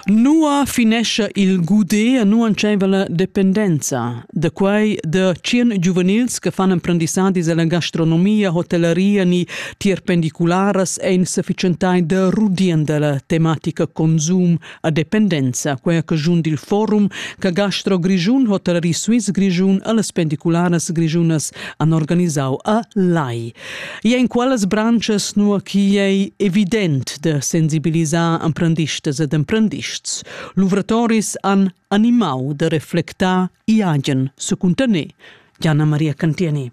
Nua finescha il gudé nu entscheiva la dependenza? Da quai da tschien giuvenils che fan emprendissadis alla gastronomia, hotelleria ni tier pendicularas ein sufficientai da rudien dalla tematica consum a dependenza, quei a cagiun dil forum che Gastro Grischun, Hotellerie Suisse Grischun e las pendicularas grischunas han organisau a Lai. E en qualas branches nua chi ei evident da sensibilisar emprendistas ed emprendists, luvratoris han animau da reflectar Iagen secuntaner, Jana Maria Cantieni.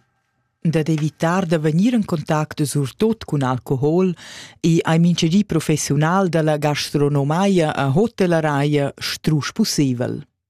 Dad evitar da vegnir en contact surtot cun alcohol e hai mintgedi professional dalla gastronomia a hotelleria strusch pusseivel.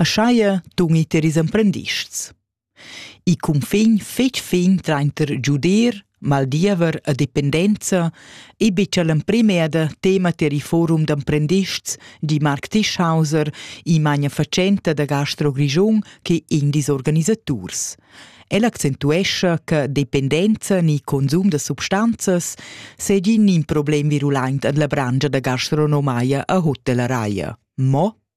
Aschia dungit er ils emprendists. Il cunfin fetg fin trainter giudir, maldiever e dependenza ei betg l'emprima eda tema tier il forum d'emprendists, di Marc Tischhauser, in magnafatschenta da Gastro Grischun che indis organisaturs. El accentuescha che dependenza ni consum da substanzas segin in problem virulent en la brangia da gastronomia a Hotelleria. Mo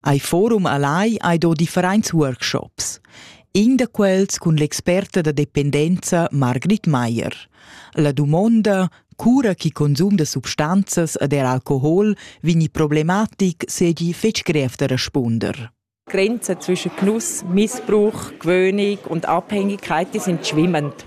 Ei forum allai hai do differents workshops. In da quels cun l'experta da dependenza Margrit Mayer. La dumonda, cura chi consum da substanzas ed er alcohol vegni problematic segi fetg grev da respunder. Grenzen zwischen Genuss, Missbrauch, Gewöhnung und Abhängigkeit die sind schwimmend.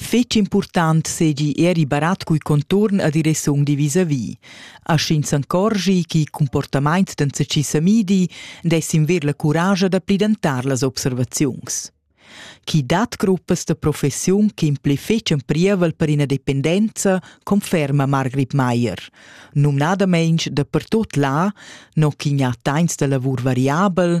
Fetg impurtant seigi era il barat cul conturn a direcziun di visavi. A sch'ins encorschi ch'il comportament d'enzatgi semidi, dess in ver la curascha da plidentar las observaziuns. Chi dat gruppas da professiun che impli fetg priavel per ina dependenza, conferma Margrit Meier. Numnadamein da pertot là, no chi gnà tains da lavur variabel,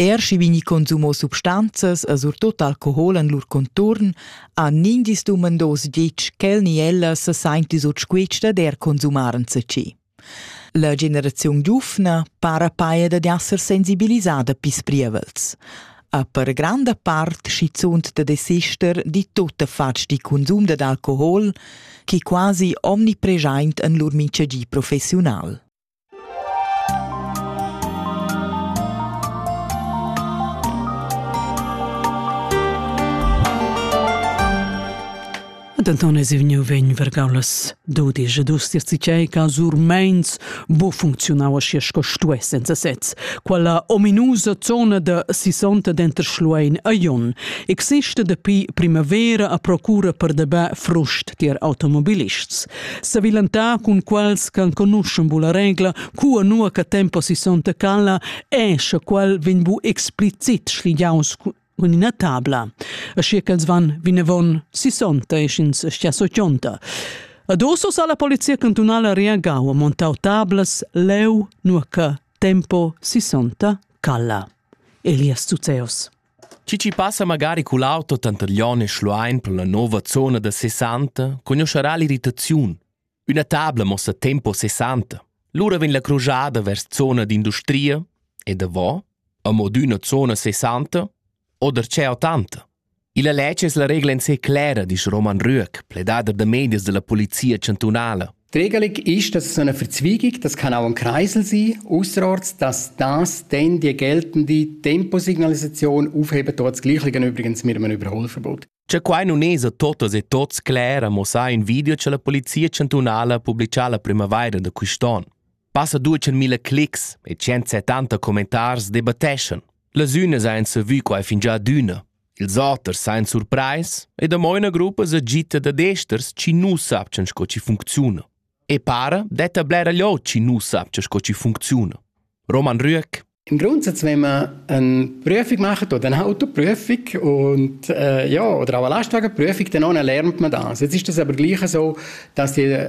Er schi vegni consumo substanzas e surtot alcohol en lur conturn, ha nindis dumandos ditg ch'el ni ella se sainti sut squitsch dad er consumar enzatgi. La generaziun giufna para paia dad esser sensibilisada pis prievels. A per granda part schizunt da desister di tutta fatg di consum dad alcohol, chi quasi omnipregiaint en lur minchegi professional. Denton es vegniu vegn vergaulas dudisch e dus dir tgei ca sur meins bu funcziunau aschi sco stuess senza sez. Quella ominusa zona da sisonta denter Schluein e Jon exista dapi primavera a procura per debà frust tier automobilists. Savilantar cun quals ch'enconuschan bu la regla, cua nua che tempo si sonta cala, è sche quel vegn bu explicit schligiaus cun ina tabla. Aschia ch'els van vinavon si sonta e sch'ins stia sochonta. A doso sa la polizia cantunala reagau a montau tablas leu, nua che tempo si sonta cala. Elias Zuzeus. Chi chi passa magari cul auto tantaglion e schluain per la nouva zona da sessanta cugnuoscherà l'irritaziun. Üna tabla mossa tempo sessanta. Lura vegn la crujada vers zona d'industria e davò, a modüna zona sessanta o darcheu tanta. Illa Lecce es la regla in sé clera, disch Roman Rüegg, pledader da medias da la Polizia chantunala. Regelung ist, dass es eine Verzweigung, das kann auch ein Kreisel sein, ausserorts, dass das dann die geltende Temposignalisation aufheben tut, das Gleiche übrigens mit einem Überholverbot. C'è quai nun es a totas e tots cler, amo sa in video cha la Polizia chantunala publicha la primavaira da quist'on. Passa duecen mille clics e 170 commentars debatteschan. Las ünas hain savü quai fingià adüna. Ils auters sajan surprais e damai ina gruppa sa gita dad esters chi nu sapchan sco chi funcziuna. E para detta bler aglio chi nu sapcha sco chi funcziuna. Roman Rüegg Im Grundsatz, wenn man eine Prüfung macht oder eine Autoprüfung und, äh, ja, oder auch eine Lastwagenprüfung, dann lernt man das. Jetzt ist das aber gleich so, dass die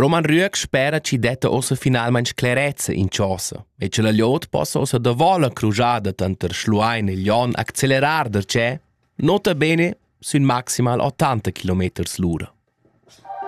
Roman Rüegg spera chi detta ossa finalmaing sclerezza in chosa e che la gliot possa ossa davò la crujada tanter Schluein e Lyon accelerar darcheu nota bene sün maximal 80 km l'ura.